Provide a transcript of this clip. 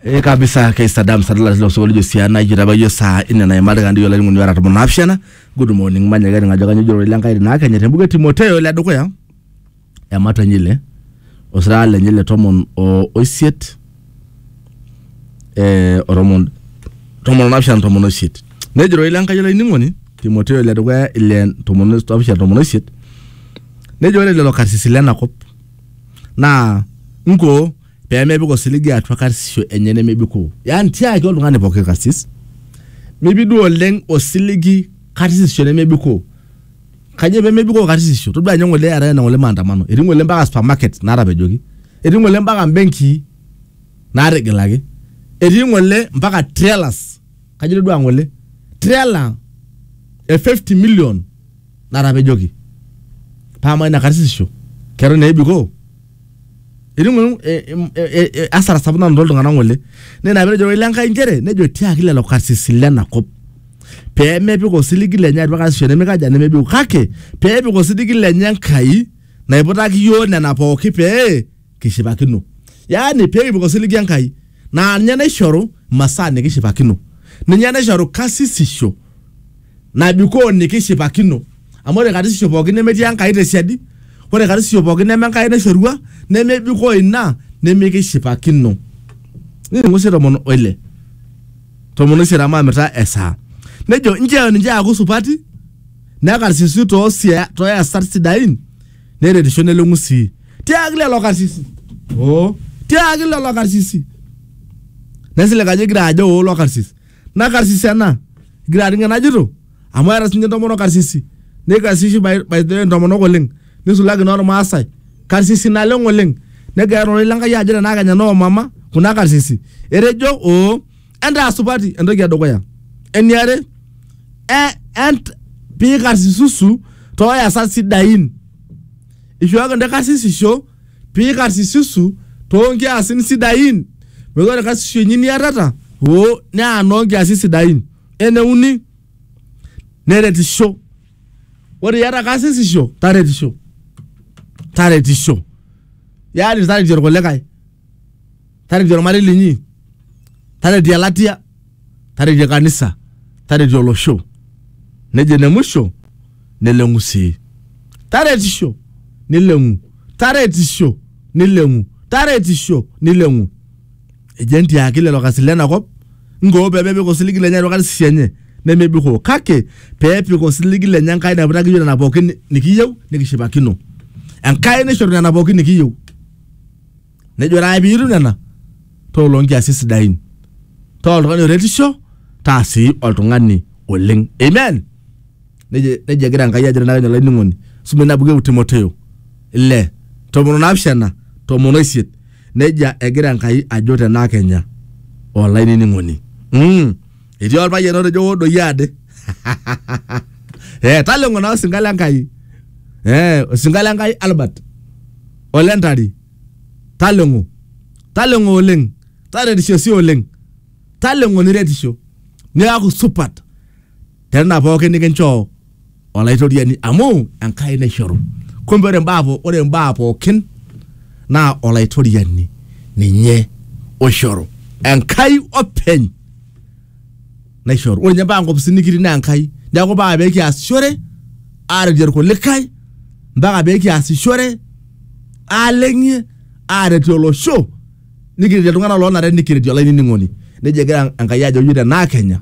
ee kabisa kaisadam sadala tilo sokoli jo siana ijo taba ijo saa ine naimari kandi ijo laing'oni ara tomon naapishana good morning manya kaining ajo kanyo jiro ile nkai naa kenya tembuke timoteo ile dukuya ematua nyile osirara lenye le tomon o oisiet eh, oromon tomon naapishana tomon oisiet nejiro ile nkai olainining'oni timoteo ile dukuya ile tomon naapishana tomon oisiet nejo ore lelo karsisi lenakop naa nkoo pee mepik osiligi atua karsisisho enye nemebikoo. Yaani tiaki oltung'ani pooki karsis, mipik duo oleng osiligi karsisisho nemebikoo. Kanyoo pee mebikoo karsisisho? Todua ninye ng'ole eetae ena ng'ole maandamano, etii ng'ole mpaka supermarket naatapejoki, etii ng'ole mpaka mbenkii naatigilaki, etii ng'ole mpaka trailers, kajo itodua ng'ole trailer e 50 million natapejoki paa amaa ina karsisisho keton ebikoo etii ng'ole e- em- e- e- e- asara sapuk nanoto iltung'anak ng'ole naa ina petejo ilo Enkai inchere nejo tiaki lelo karsisi lena kop pee mepik osiligi lenye atua karsisisho nemikaja nemebiku kake pee epik osiligi lenye Enkai naiputaki iyiook nena pooki pee kishipakino yaani pekipuku osiligi enkai naa ninye naishoru masaa nikishipakino ninye naishoru kasisisho nabikoo nikishipakino amu ore karsisisho pookin nemetii enkai tesiadi ore karsisisho pookin neme enkai naishorua nemebikoo ina nemikishipakino niningu sii tomon oile tomon oisiet amu amita esaa nejo nchoo ninche aaku supati nekarsisi toosia toyasat sidain neretisho neleng'u sii tiaaki lelo karsisi oo tiaaki lelo karsisi nesilig ajo igira ajo oo lo karsis na karsis ena igira aning enajito amu eeta sinye entomonok karsisi neikarsishi by, by the way intomonok oleng nisulaki normaasai karsisi naleng oleng negira ororei lenkai ajo tenaa kenya noo mama kuna karsisi etejo oo entaa supati entoki edukuya eniare e- ent- piikarsisusu tooyasat sidain ishooki ntae karsisisho piikarsisusu toonkiasin sidain metaa ore karsisisho inyi niatata oo naa noonkiasin sidain eneuni neretisho ore iata karsisisho taretisho taretisho yaani taretie irkulikae taretie ormarei linyi taretie elatia taretie kanisa taretie olosho nejo ene musho neleng'u sii taretisho nileng'u taretisho nileng'u taretisho nileng'u ejo entiaki lelo kasi lena kop nkoo pemepik osiligi lenye atua karsisho enye nemebikoo kake peepik osiligi lenye enkai naiputaki yiok nena pookin nikiyieu nikishipakino enkai naishoru nena pookin nikiyieu nejo ore ake piitum nena taa oloonkiasin sidain taa oltung'ani oretisho taa sii oltung'ani oleng amen nejo nejo egira enkai ajo tenakenya olainining'oni suma ina buku e timoteo ile tomon onaapishana tomon oisiet nejia egira enkai ajo tenakenya olainining'oni mm. etii olpayian otejo hoo doi ade eh, taleng'o naa osinka le Enkai eh, osinka le Enkai Albert ole Ntari taleng'o taleng'o oleng taretisho sii oleng taleng'o niretisho niaku supat tena pookin nikinchoo olaitoriani amu Enkai naishoru. Kumbe ore mbaa po- ore mbaa pookin naa olaitoriani ninye oishoru. Enkai openy naishoru. Ore ninye mpaka nkopisini nikitii naa Enkai. Neeku mpaka pee kiasishore aaretie irkulikae, mpaka pee kiasishore aaleng'ie aaretie olosho nikiretie iltung'anak loonare nikiretie olainining'oni. Neija egira Enkai ajo iyiook te naa Kenya.